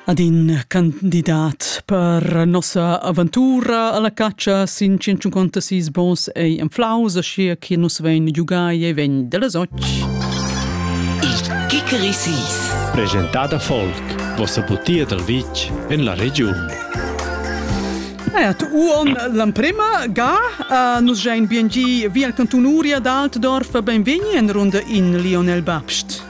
ad in candidat per nossa aventura alla caccia sin 156 bons ei en flaus sia che nus vein giugai e vegn delle soci Il Kikerisis Presentada Folk vossa butia dal vitg en la regiun Ert uon l'emprema ga uh, nus gein bien gi via al cantunuria d'Altdorf benvegni en runda in Lionel Babst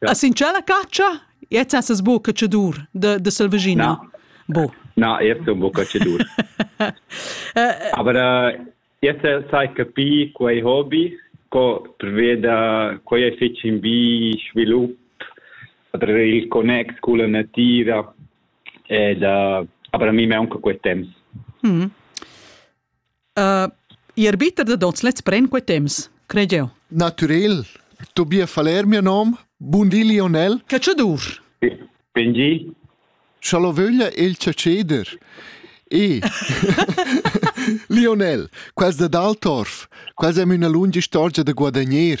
A sincer la catscha? Jetzt hast es buca cedur de, de Selvagina. No. Bu. Na, jetzt un buca cedur. Aber äh, jetzt sai capir quei hobby, co preveda quei è fitg in bi svilup tra il connex con la natura ed uh, aber mi me anche quei temps. Mm. Uh, I arbiter da tots lets pren quei temps, cred jeu. Naturel, Tobias Faller mio nom, bun di Lionel. Cacciadur. Ben di. Schalovöglia il caceder. E Lionel, quels de Daltorf, quels è una lunga storia da guadagner.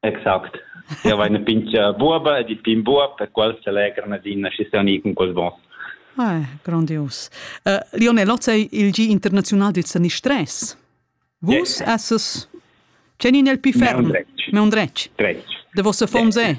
Exact. Eu vaina pincha buoba ed il pin buob per qual s'allegran adina schi sauni cun quels bons. Ah, grandius. Uh, Lionel Lotz è il G internazional del sanistress. Vus yes. esses... C'è nel più ferm? Me un dretg. Me un dretg. Dretg. De vosse fonds è?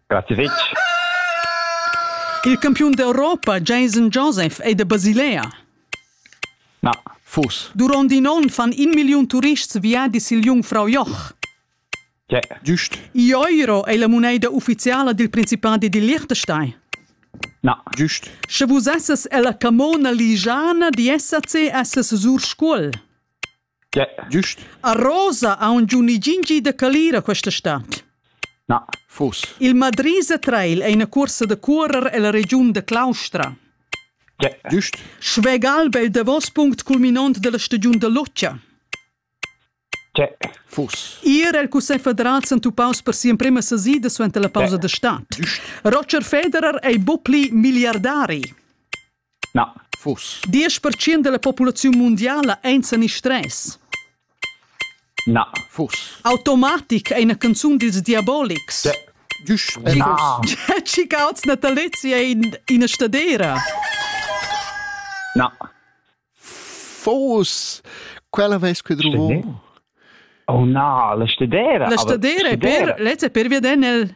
Grazie fitg. Il campiun d'Europa Jason Joseph ei da Basilea. Na. Fus. Duront in onn fan in milliun turists viadis sil Jungfrau Joch. Tge. Giust. Euro ei la moneda ufficiala dil Principadi di Liechtenstein. Na. Giust. Sche vus esses ella camona ligiana di SAC esses sur Scuol. Giust. A Rosa aunc giu ni gingi da calira questa stad. Na, fuss. Il Madrisa Trail ei ina cuorsa da cuorer ella regiun da Claustra. Giust. Schwegalb ei il davos punct culminont dalla stagiun da loccia. Fuss. Ir el Cussegl federal s'entupaus per sia emprema sesida suenter la pausa da stad. Roger Federer ei buc pli miliardari. Na. Fuss. Diesch pertschient dalla populaziun mundiala ein senistress. Na. Fuss. Automatic ei ina canzun dils Diabolics. Düsch. Chicauts natalizia in ina stadera. Na. Fuss. Quella veis que druvo. Oh na, la stadera. La stadera è per, lezza per veder nel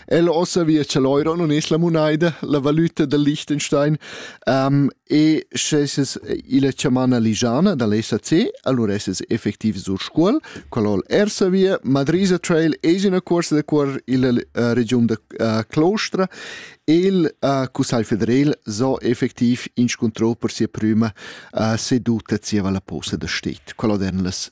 El ossa via cha l'euro non es la monaida, la valüta del Liechtenstein, um, e sche es illa chamana ligiana da l'SAC, allura es es effectiv sur Scuol, qual hol ersa via, Madrisa Trail es in corsa da cuor illa uh, regiun da uh, Claustra, il uh, Cussagl federal so effectiv inscuntrò per sia prüma uh, seduta zieva la posa da stet, qual oden las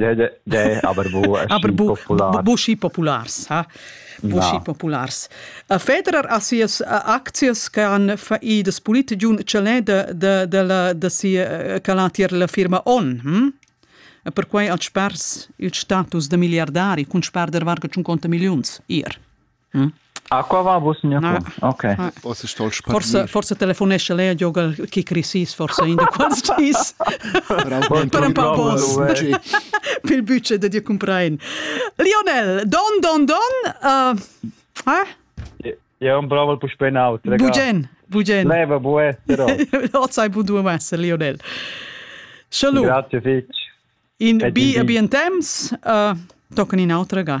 De, aber bu aschi populars. Bu schi populars, ha? Bu schi populars. Federer ha sias aczias che han faidas politici un celè de, de, de, la, de sia, che l'ha tier la firma On, hm? E perquai ha spers il status de miliardari cun sperder varga 50 milliuns ir. Aqua va vos nia qua. Ok. Forse stol Forse forse telefonescha lei a giogar kick recess forse in da quals dis. Per un pa pos. Pil budget da dir comprein. Lionel, don don don. Eh? Ja un braval pus ben out. Bugen, bugen. Leva bue, però. Oz hai budu messe Lionel. Schalu. Grazie fitch. In bi abien temps, uh, tocan in autra ga.